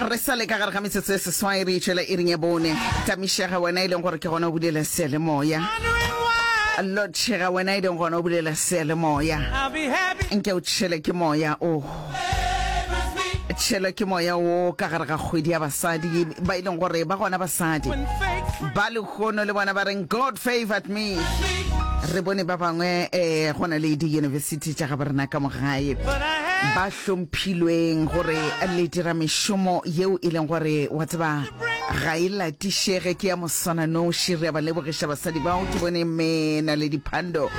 Re sa le ka gare ga metsotso e seswai re itšwela iring ya bone. Tamišega wena e leng gore ke gona o bulela seyalemoya. Lotšhega wena e leng gona o bulela seyalemoya. Nke o tšhele ke moya o tšhelwe ke moya wo ka gare ga kgwedi ya basadi ba e leng gore ba gona basadi ba lehono le bona ba reng god favored me re bone ba bangwe um go na le di-university tša ga bo rena ka mogae ba hlomphilweng gore le dira mešomo yeo e leng gore wa tseba ga e latišege ke ya moswananoši re a ba lebogiša basadi bao ke bone mme na le diphando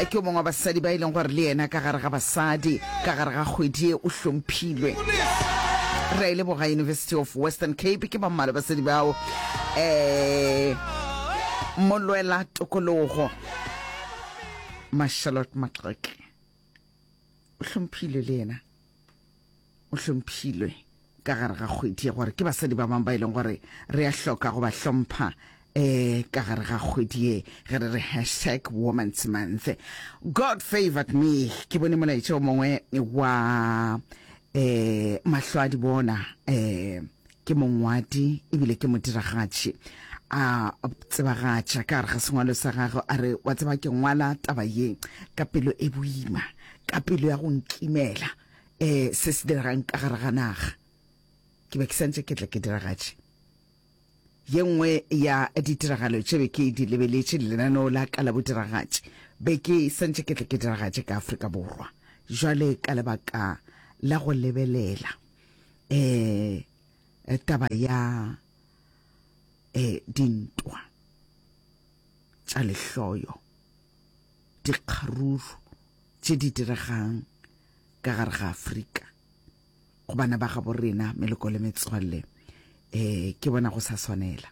ke o mongwe wa basadi ba e leng gore le yena ka gare ga basadi ka gare ga kgwedi e o hlomphilwe re a e leboga university of western cape ke ba mmalo basadi bao um molwela tokologo mashalot maqeke o hlomphilwe le yena o hlomphilwe ka gare ga kgwedi ya gore ke basadi ba bangwe ba e leng gore re a hloka go ba hlompha eh ka gare ga kgwedi ye ge re re hashtag woman's month god favored me ke bone molaetša o mongwe wa eh mahlo a di bona eh ke mongwadi ebile ke modiragatši a tsebagatša ka gare ga sengwalo sa gagwe a re wa tseba ke ngwala taba ye ka pelo e boima ka pelo ya go nkimela um se se diregang ka gare ga naga ke be ke santse ke tla ke diragatše ye nngwe ya ditiragalo tše be ke di lebeletše lenaneo la ka la bodiragatše be ke santse ke tla ke diragatše ka afrika borwa jwale ka lebaka la go lebelela eh, eh taba ya eh dintwa tša lehloyo dikgaruru tše di diregang ka gare ga afrika go bana ba gabo rena meloko le metswalle um ke bona go sa swanela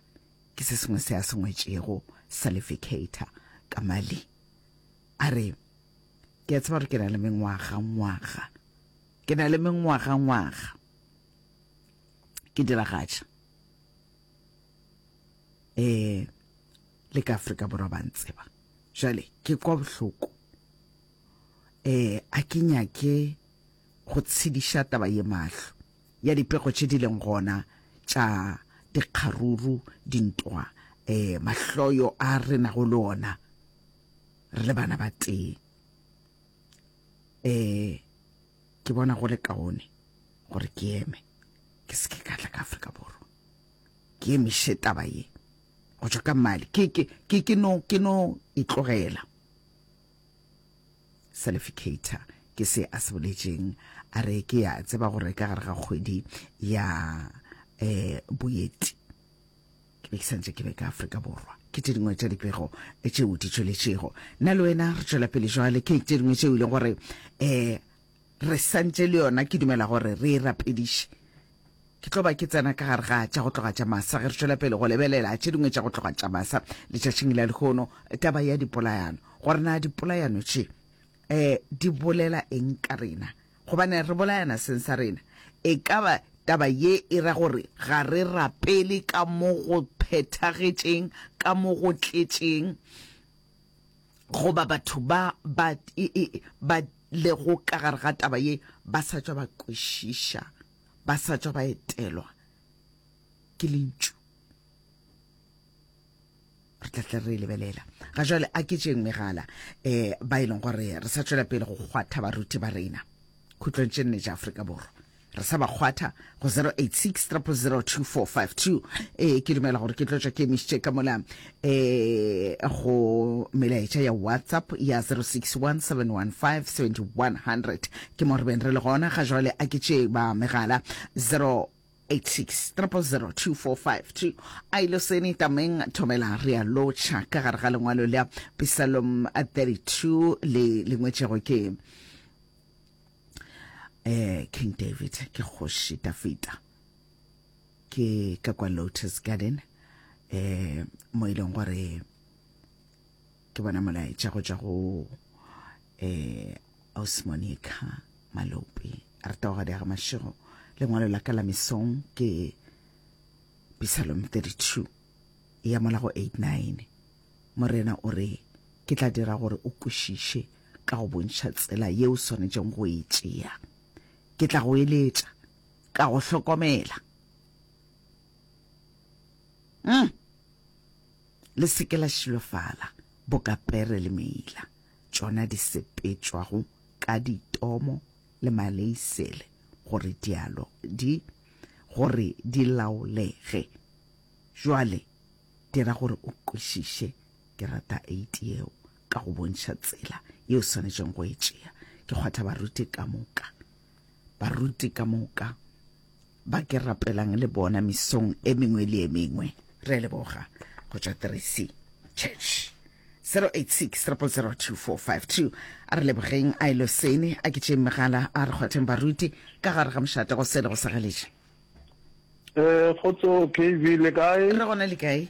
ke se sengwe se a sengwetšego salificator ka mali a re ke a tseba gore ke na le mengwaga ngwaga Ke na le mengwagangwaga ke diragatša eh le ka Afrika Borwa ba ntseba jale ke kwa bohloko eh a ke nyake go tshediša taba ye mahlo ya dipego tše di leng gona tša dikgaruru dintwa eh mahloyo a re nago le ona re le bana ba tee um ke bona go le kaone gore ke eme ke se ke ka tla ka afrika borwa ke emiše taba ye go tšwa ka mali ke ke ke ke no ke no itlogela salificator ke se a se boletseng a re ke ya tseba gore ka gare ga kgwedi ya um boeti ke be ke santse ke be ka Afrika Borwa ke tše dingwe tša dipego eh, tšeo di tšweletšego nna le wena re tšwela pele jwale ke tše dingwe tšeo e leng gore um re santse le yona ke dumela gore re e rapediše ke tlo ba ke tsena ka gare ga tša go tloga tša masa ge re tšwela pele go lebelela tše dingwe tša go tloga tša masa letšatšing la lehono taba ya dipolayano gore na dipolayano tše um di bolela eng ka rena Gobane re bolayana seng sa rena. E ka ba taba ye e ra gore ga re rapele ka mo go phethagetšeng, ka mo go tletšeng, goba batho ba ba, ba lego ka gare ga taba ye ba sa tšwa ba kwešiša, ba sa tšwa ba etelwa ke Lentšu. re tla tla re e lebelela ga jale a ke tšeng megala um ba e leng gore re sa tšwela pele go kgwatha baruti ba rena khutlong tše nne tša aforika borwa re sa ba kgwatha go 0863002452 ee ke dumela gore ke tlotšwa ke emišitše ka mola um go melaetša ya whatsapp ya 0617157100 ke mo re beng re le gona ga jale a ke tšee ba megala 0 86000245 a ilo seni tameng thomela re a lotšha ka gare ga lengwalo la pisalom 32 le lengwetšego ke eh king david ke kgoši dafita ke ka kwa lotus garden eh mo e leng gore ke bona molaetša go tša go eh osmonica malope a re tago ga mašego lengwalo la ka la mesong ke pisalom 32 e ya mola go 89 morena o re ke tla dira gore o kwešiše ka go bontšha tsela ye o swanetšeng go e tšea ke tla go eletša ka go hlokomela mm. le se ke la šilofala, boka pere le meila, tšona di sepetšwago ka ditomo le maleisele, gore dialo di, gore di laolege. Bjale, dira gore o kwešiše kerata eiti yeo, ka go bontšha tsela yeo o swanetšego go e tšea. Ke kgwatha baruti ka moka, Baruti ka moka ba ke rapelang le bona misong e mengwe le e mengwe re a leboga go tšwa teresi church 0860002452 a re lebogeng a elo sene a ke tšeng megala a re kgwatheng baruti ka gare ga mošate go sele go sagaletše um kgotso kv le kae re gona le kae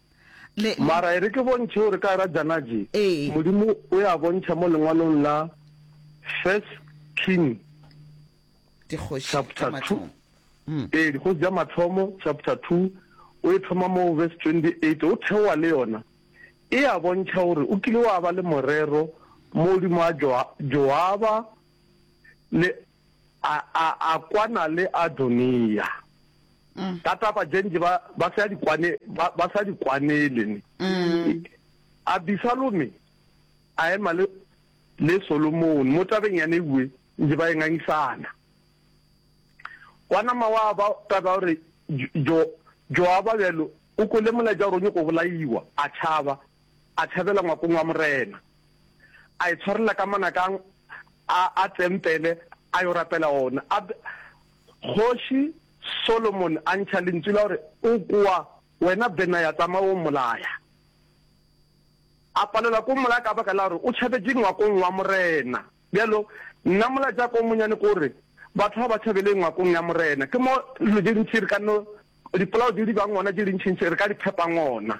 Le. Mara e re ke bontšhe gore ka ra Janaji, Ee. Modimo o ya bontšha mo lengwalong la First King Dikgoši tša chapter 2. mathomo. Mm. Ee, Dikgoši tša mathomo chapter 2 o e thoma mo verse 28 o theoa le yona. E a bontšha gore o kile wa ba le morero mo godimo a Joa- Joaba le A, a, a kwana le Adonia. Ka taba je nje ba, ba sa di kwane, ba, ba sa di kwanele ne. Abisalome a ema le, le Solomone mo tabeng ya newe nje ba e ngangisana. Wa nama wa ba taba gore Jo, Joaba bjalo o kwele molaetša gore o nyoko bolaiwa, a tšhaba, a tšhabela ngwakong wa Morena. a itshwarela ka manakang a a tempele a yo rapela ona. A be Kgoši Solomon a ntšha lentsu la gore, O kwa, wena Benaya, tsamaya o mmolaya. A palelwa ke go mmolaya ka baka la gore o tšhabetše ngwakong wa morena. Bjalo nna molaetša wa ka o monnyane ke gore, Batho ga ba tšhabele ngwakong ya morena. Ke mo dilo tše dintši re ka no, dipolao tše di bang gona tše dintšintši re ka di phepang gona.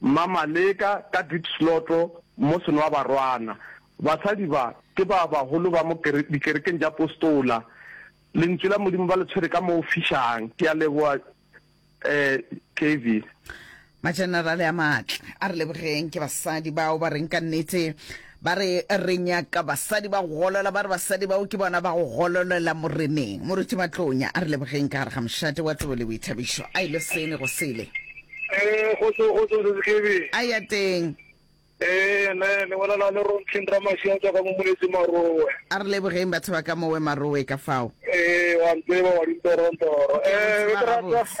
Mmamaleka ka Diepsloto mo Senoabarwana. Basadi ba, ke ba bagolo ba mo dikerekeng tša Apostola. Lentšu la Modimo ba le tshwere ka mo fišang. Ke a leboga, Kevin. Majenerale a maatla, a re lebogeng. Ke basadi bao ba reng ka nnete Ba re, Re nyaka basadi ba go golola. Ba re, Basadi bao ke bona ba go gololela moreneng. Moruti Matlonya a re lebogeng ka gare ga mošate wa tebo le boithabišo. A ile sele go sele. Ee, kgotso, kgotso, Sesi Khebi. A ya teng. Ee, ne, ne bona na le Rontleng Ramaši a tswa ka mo Moletse Marowe. A re lebogeng batho ba ka mowe Marowe ka fao. Ee, wa ntseba wa dintorontoro. Ke a mo tseba gabotse.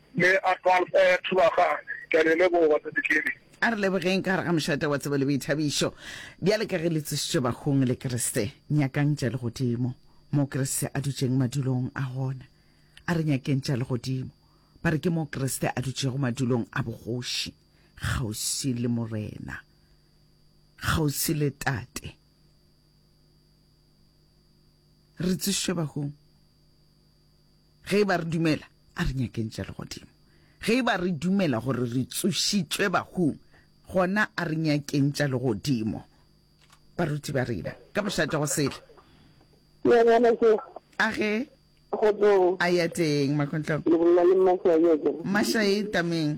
Le a tlwafa ya thulaganyo. Ke a le leboga, Tate Kelly. A re lebogeng ka gare ga mošate wa tsebo le boithabišo. Bjale ka ge le tsošitšwe bafung le Kriste, nyakang tša legodimo, moo Kriste a dutšeng madulong a gona. A re nyakeng tša legodimo. Ba re ke moo Kriste a dutšego madulong a bogoši, kgauswi le Morena, kgauswi le Tate. Re tsošitšwe bafung. Ge e ba re dumela, a re nyakeng tša legodimo. Ge e ba re dumela gore re tsošitšwe bahung, gona a re nyakeng tša legodimo. Baruti ba rena, ka mošate go sele. Ya bjale ke. A ge. Go tloga. A ya teng, Makontlong. Le bolela le Mmashae, a ya teng. Mmashae, Tameng.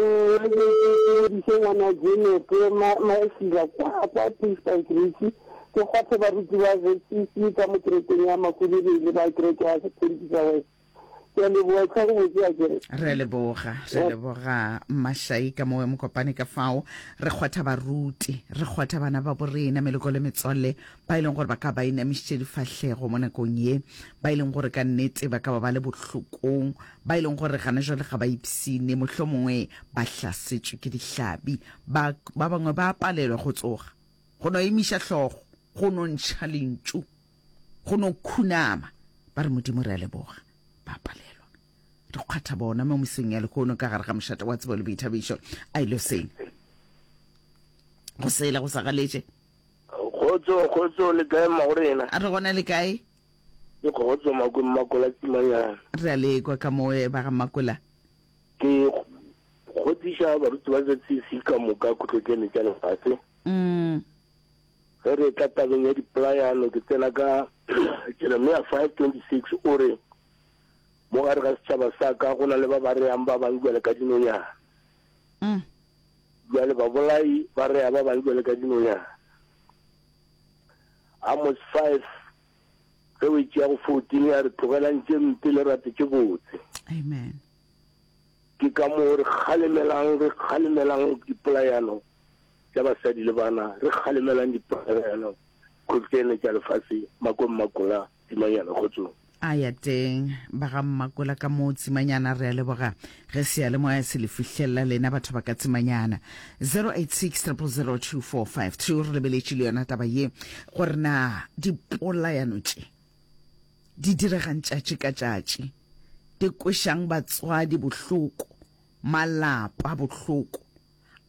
Eya ke ke ke rediše ngwana Jeno ke ma Maesira kwa kwa Puisbank Ritšhi ke kgothe baruti ba ZCC ka mo kerekeng ya Makulele le ba kereke ya Sepentisa West. Ke a leboa etlha go botse ya kere. Re a leboga re leboga Mashai ka mowe mokopane ka fao re kgotha baruti re kgotha bana ba borena meloko le metswalle ba e leng gore ba ka ba inamišitše difahlego mo nakong ye ba e leng gore ka nnete ba ka ba ba le bohlokong ba e leng gore gana jwale ga ba ipsine, mohlomongwe ba hlasetšwe ke dihlabi, ba, ba bangwe ba palelwa go tsoga, go no emiša hlogo, go no ntšha lentšu, go no khunama, ba re, Modimo, re a leboga, ba palelwa. Re kgwatha bona mo mesong ya lehono ka gare ga mošate wa tsebo le boithabišo. A e lo seng go sela go sa galetše. Kgotso, kgotso, le kae mma go rena? A re gona le kae? Ke Kgotso Makwe Mmakola Tsimanyana. Re a le kwa ka mo ba ga Mmakola. Ke kgothiša baruti ba ZCC ka moka Khutlotsene tša Lefase. Ge re etla tabeng ya dipolayano ke tsena ka Jeremia 5:26 o re, Mo gare ga setšhaba sa ka go na le ba ba reang ba bang bjale ka dinonyana. Bjale babolai ba rea ba bang bjale ka dinonyana. Amos 5, ge o e tšea go 14, a re, Tlogelang tše mpe le rate tše botse. Amen. Ke ka moo re kgalemelang, re kgalemelang dipolayano tša basadi le bana, re kgalemelang dipolayano kgotleene tša lefase, makong makola. Tsimanyana, Kgotsong. A ya teng, ba ga Mmakola ka moo, Tsimanyana, re a leboga ge seyalemoya se le fihlelela lena batho ba ka Tsimanyana. 0860002452, re lebeletše le yona taba ye gore na dipolayano tše di diregang tšatši ka tšatši di kwešang batswadi bohloko, malapa bohloko,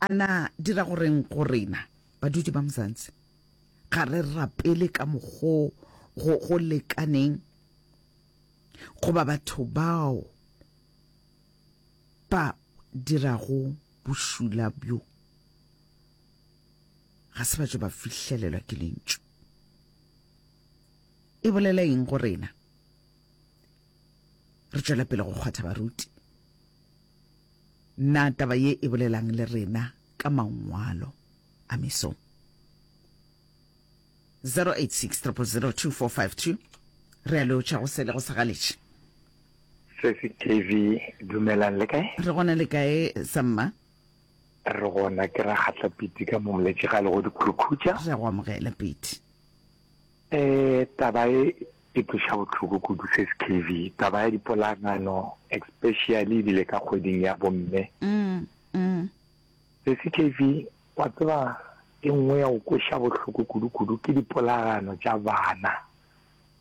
a na di ra go reng go rena badudi ba Mzansi? Ga re rapele ka mokgo go, go lekaneng goba batho bao ba dirago bošula bjo ga se ba tšo ba fihlelelwa ke lentšu. E bolela eng go rena? Re tšwela pele go kgwatha baruti. Na taba ye e bolelang le rena ka mangwalo? a mesong. 0860002452 re a leotšha go sele go sa galetše sesi tv dumelang le kae re gona le kae samma re gona ke ra kgatla piti ka momletše ga le go dikhurukhutša re go amogela piti um taba e e tloša botlhoko kudu sesi kv taba ya dipolagano especially ebile ka kgweding ya bomme mm, mm. Sesi KV, Wa tseba e nngwe ya go kweša bohloko kudu-kudu ke dipolagano tša bana,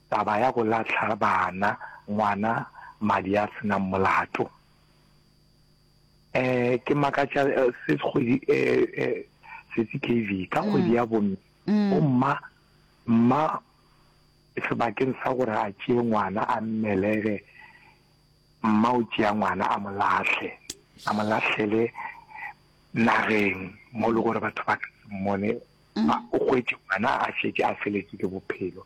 taba ya go lahla bana, ngwana madi a se nang molato. Eh, ke makatša se kgwedi eh, eh, Sesi KV, ka kgwedi ya bomme, bomma, mma sebakeng sa gore a tšee ngwana a mmelege, Mma o tšea ngwana a mo lahle, a mo lahlele nageng mo le gore batho ba ka se mmone. Ba o gwetše ngwana a šetše a feletše ke bophelo.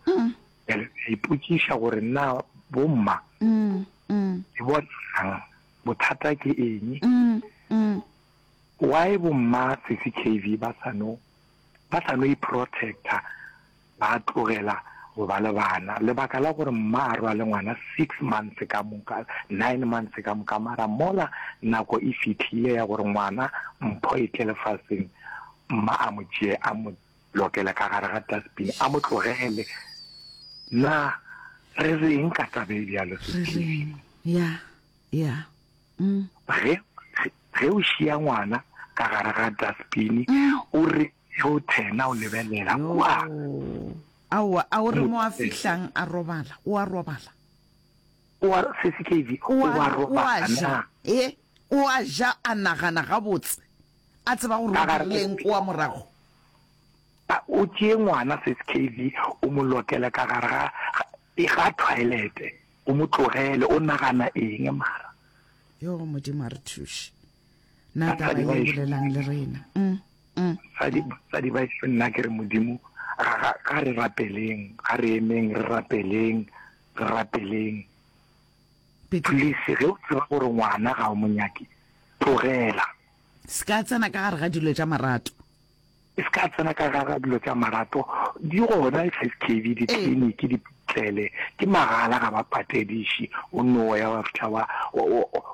Bjale a ipotšiša gore na bomma le bonang bothata ke eng. Why bomma Sesi KV ba sa no ba sa no i-protector. ba tlogela go ba le bana, lebaka la gore mma a rwale ngwana six months ka moka, nine months ka moka, mara mola nako e fihlile ya gore ngwana mpho e tle lefaseng, mma a mo tšee a mo lokele ka gare ga dustbin, a mo tlogele. Na re reng ka taba e bjalo? Re reng? Ya, ya. Mm. Ge ge o šia ngwana ka gare ga dustbin, mm. o re Youthe, na o lebelela kua? Aowa, a o re mo a fihlang a robala, o a robala. O a, Sesi Kevy, o a robala na? E, o a ja, a nagana gabotse, a tseba gore o dirileng kua morago. A, o tšee ngwana, Sesi Kevy, o mo lokele ka gare ga, ga, Pega thwaelete o mo tlogele o nagana eng mara. Yoo modimo a re thuše. Na taba ye bolelang le rena umm. Basadi baešo nna ke re modimo ga re rapeleng ga re emeng re rapeleng re rapeleng please ge o tseba gore ngwana ga o mo nyake tlogela. Se ka tsena ka gare ga dilo tša marato. E se ka tsena ka gara dilo tša marato di gona skv ditliniki di tlele ke magala ga ba patediši o no ya wa fihla wa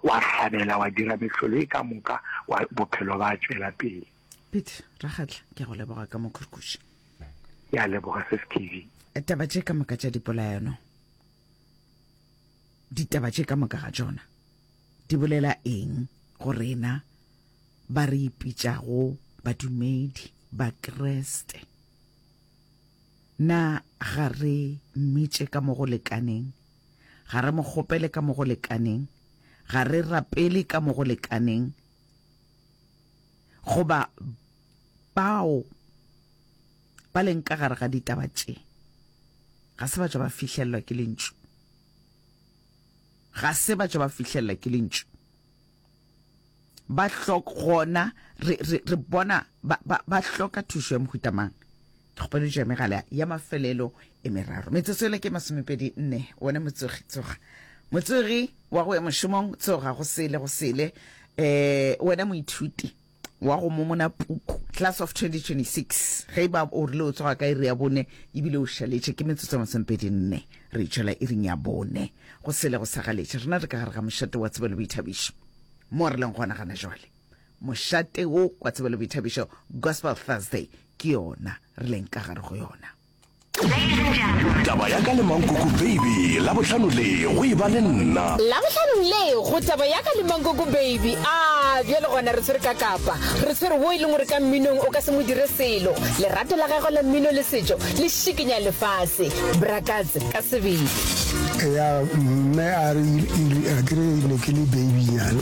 wa hlabela wa dira mehlolo e ka moka wa bophelo ba tšwela pele Pete Rakgatla ke go leboga ka mokhurkuši ke a leboga skv taba tše ka moka tša dipolaeno ditaba tše ka moka ga tšona di bolela eng go rena ba re ipitšago badumedi ba Kriste. Na ga re mmitše ka mo go lekaneng? Ga re mo kgopele ka mo go lekaneng? Ga re rapele ka mo go lekaneng? Goba bao ba leng ka gare ga ditaba tše ga se ba tšwa ba fihlellwa ke lentšu? Ga se ba tšwa ba fihlellwa ke lentšu? ba hlok gona re, re, re bona ba, ba, ba hloka thušo ya mohuta mang ke kgopeletšo ya megala ya mafelelo e meraro metsotso ele ke masomepedi nne one motsogi tsoga motsogi wa go ya mošomong tsoga go sele go sele um wena moithuti wa go momona puku class of 2026 ge e ba o rile o tsoga ka iri ya bone ebile o šaletše ke metsotso masomepedi nne re itšwela iring ya bone go sele go sagaletše rena re ka gare ga mošate wa tsebelo boithabišo mo re leng gona gana jwale mošate wo wa tsebelo boithabišo gospel thursday ke yona re leng ka gare go yona taba ya ka le mankoko baby labohlano le go e ba le nna labohlano le go taba ya ka le mankoko baby a bjale gona re tshwere ka kapa re tshwere wo e leng gore ka mminong o ka se mo dire selo lerato la gagwe la mmino le setšo le šikinya lefase brakatse ka sebele ya mme a re kere ne ke le babynyana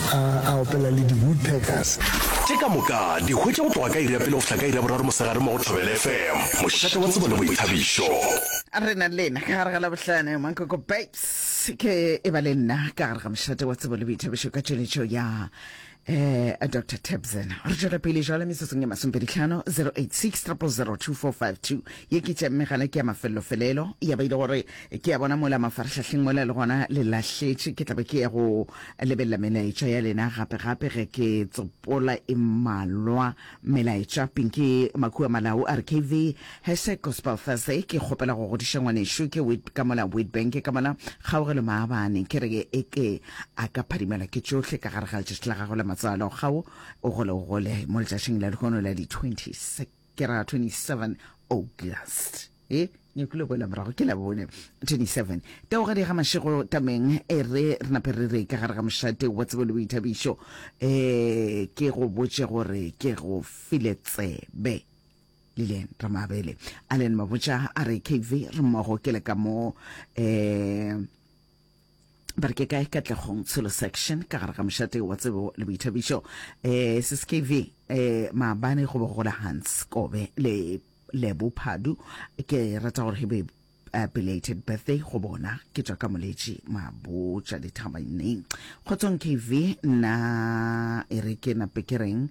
A a opela le di-woodpeckers. Tše ka moka di hwetša go tloga ka iri ya pele go fihla ka iri ya boraro mosegare mo go Thobela FM, mošate wa tsebo le boithabišo. A re na le lena ka gare ga Labohlano, Mankoko Babes ke e ba le nna ka gare ga mošate wa tsebo le boithabišo ka tšweletšo ya eh Dr Tabson re tšwela pele jwale metsotsong e masompeditlhano 086 0002452 ye ke tša mme gana ke ya mafellofelelo ya ba ile gore ke ya bona mola mafarahlahleng mola le gona le lahletše ke tlabe ke ya go lebelela melaetša ya lena gape gape ge ke tsopola e malwa melaetša pinki makua malau a re kv hese gospel thursday ke kgopela go godiša ngwanešo ke wit ka mona wit bank ka mona kgaogelo maabane ke re e ke a ka phadimela ke tšohle ka gare ga letšatši la gago la matsalo kgao o gole o gole mo letšatšing la lehono la di-26 ke ra 27 august e nyako le boela morago ke la bone 27 teogadi ga mašego tameng e re re nape re re ka gare ga mošate wa tsebo le boithabišo um ke go botše gore ke go file tsebe lilian ramabele allen mabotša a re kv re mmogo ke le ka mo um ba re ke kae katlegong tshelo section ka gare ga mošate wa tsebo le boithabišo um sskv um maabane go be gola hans kobe le lebo phadu ke rata gore he be uh, belated birthday go bona ke tswa ka moletši mabotša dithabaneng kgotsong kv nna e re ke nape ke reng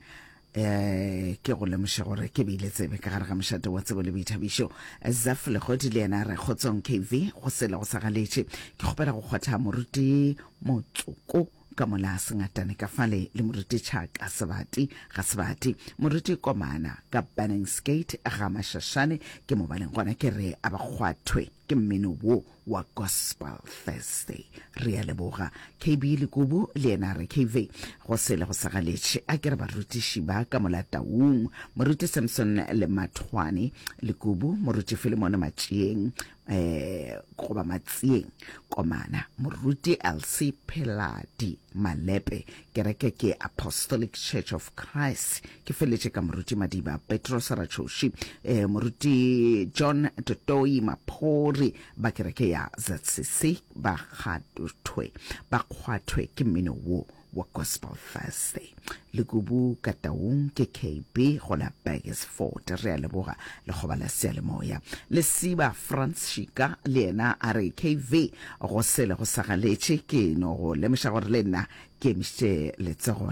Eh, ke go lemoše gore ke beile tsebe ka gare ga mošate wa tsebo le boithabišo zaf legodi le yena re kgotsong kv go sela go sa galetše ke kgopela go kgwatha moruti motsoko ka mola sengatane ka fale le moruti tšhaka sebati ga sebati moruti komana ka banning skate ga mašašane ke mo baleng gona ke re a ba kgwathwe Ke mmino wo wa Gospel Thursday. Re a leboga. KB Lekubu le yena a re, KV, go sele go sa galetše. A ke re barutiši ba ka Molataung, Moruti Samson Lemathwane, Lekubu, Moruti Filemone Matšeeng, um goba Matsieng, Komana, Moruti Elsie Pheladi, Malepe, Kereke ke Apostolic Church of Christ, ke feletše ka moruti madiba petros ratšhoši eh, moruti john totoi maphori ba kereke ya zcc ba kgathothwe ba kgwathwe ke mmino wo wa gospel thursday lekubu ka taung ke kb go la burgesford re a leboga lekgoba la sealemoya lesiba franc shika le yena a re kv go sele go sagaletše ke no go lemoša gore le nna ke emišitše letsogo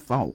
fao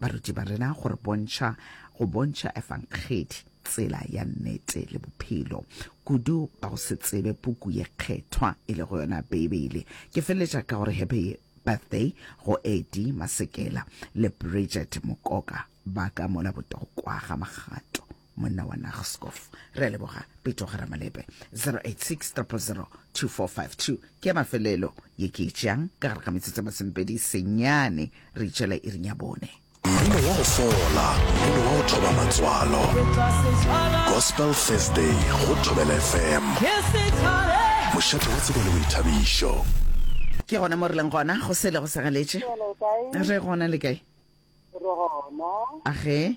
Baruti ba rena go re bontšha go bontšha efangedi tsela ya nnete le bophelo kudu ba go se tsebe puku ye kgethwa e le go yona beibele ke feleletša ka gore happy birthday go edi masekela le bridget mokoka ba ka mola botokwa ga magato monna wa nagscof re a leboga peto ga ramalepe 0860002452 ke ya mafelelo ye ke e tšeang ka gare ga metsotso ya masomepedi senyane re itšela irinya bone mmino wa go fola mmino wa go thoba matswalo gospel thursday go thobela fm mošate wa tsebele boithabišo ke gona mo re leng gona go sele go segaletše re gona le kae a ge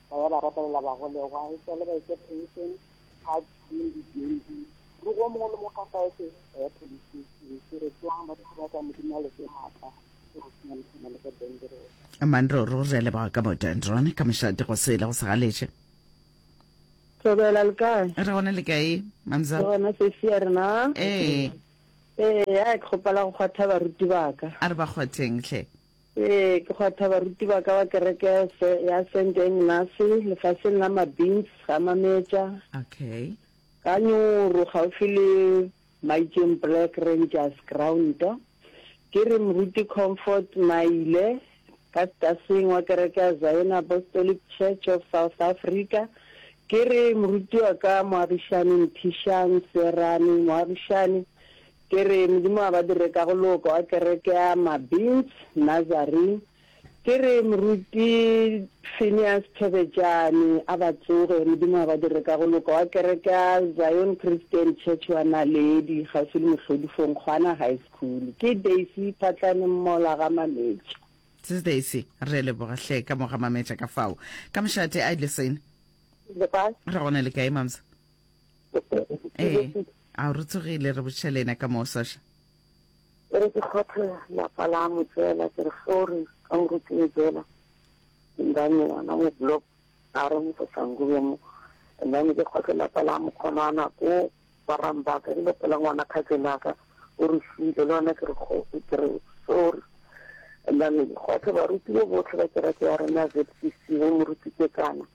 ba ya ba rapelela bagolegwa, e tšwa le ba etša pension, ga tšhwene dibjending, ruri o mongwe le mongwe ka saese ba ya police station, ke re tswang ba thaba ka Modimo a le fe maatla, ke go senya le tshwana le ka Dendron. Aman ruri re a leboga ka mo Dendron, ka mošate go sele go segaletše. Thobela le kae? Re gona le kae mamza? Re gona sesi ya rena. Ee. Ee, ya ke kgopela go kgwatha baruti ba ka. A re ba kgwatheng hle. Ee, ke kgwatha baruti ba ka ba kereke ya Saint Engnase lefaseng la Mabins, Gamametša, Okay. ka Nyoro, kgaufsi le Maitšeng Black Rangers Ground. Ke re Moruti Comfort Maile, ka Staseng, wa kereke ya Zion Apostolic Church of South Africa. Ke re Moruti wa ka Moagišani Nthišang Seerane, Moagišani, Ke re, Modimo a badire ka go loko a kereke ya Mabins, Nazarene. Ke re, Moruti Phineas Thobejane a ba tsoge, Modimo a badire ka go loko a kereke ya Zion Christian Church wa Naledi, kgauswi le Mohlodifong, Kgwana High School. Ke Daisy Phatlane Mmola ga Mametša. Sis Daisy, re a leboga hle, ka mo ga Mametša ka fao. Ka mošate, Idle Sane. Re gona le kae, Mamsa? ee a re tsogile re botšha le ena ka moo sasha ke re ke kgothe lapa la mo tsela ke re sorry ka moruti mo tsela ndane yona mo block a re mo sasangube mo ndane ke kgothe lapa la mo kgonana ko barang ba ka dilo pela ngwana khatsela ka o re file le yona ke re ke re sorry ndane kgothe baruti bo botlhe ba kereke ya rena zcc mo moruti ke kana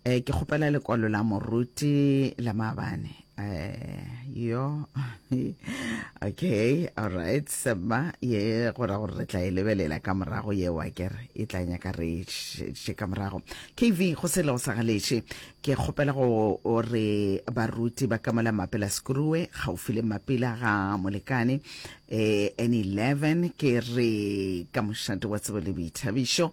Eh, ke kgopela lekwalo la moruti la mabane eh, yo okay all right sema ye go ra gore re tla e lebelela ka morago ye wa kere e tla nyaka re še ka morago kv go se le go sa galeše ke kgopela go re baruti ba kamola mapela skrue gaufi le mapila ga molekane eh, n11 ke re ka mošate wa tsebo le boithabišo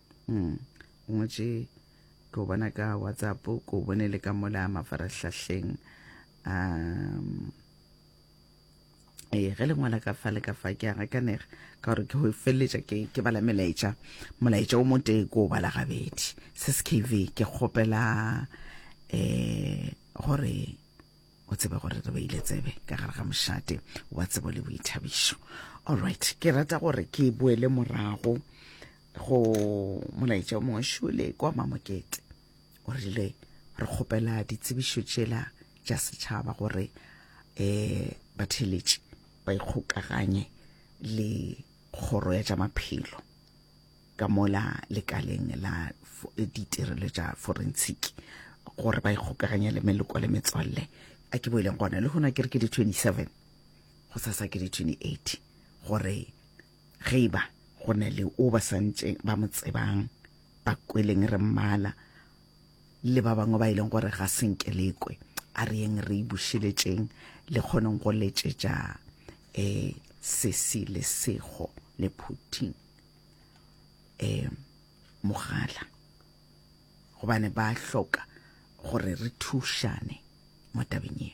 mm. o ngwetše ke o bona ka whatsapp ke o bone le ka mola mafarahlahleng um ee ge le ngwala ka fa le ka fa ke a gakanega ka gore ke go feleletša ke bala melaetša molaetša o motee ke o bala gabedi se skv ke kgopela um gore o tsebe gore re beile tsebe ka gare ga mošate wa tsebo le boithabišo allright ke rata gore ke boele morago go molaetša o mongwe šole kwa mamokete o rile re kgopela ditsebišo tšela tša setšhaba gore um batheletši ba ikgokaganye le kgoro ya tša maphelo ka mola lekaleng la ditirelo tša forensic gore ba ikgokaganya le meloko le metswalle a ke boeleng gona le gona ke re ke di 27 go sasa ke di 28 gore ge e ba go na le o ba santše ba mo tsebang ba kweleng re mmala le ba bangwe ba e leng gore ga senke lekwe a re yeng re ibušeletšeng le kgoneng go letšetša um sesi le sego le phuthing um mogala gobane ba hloka gore re thušane mo tabeng ye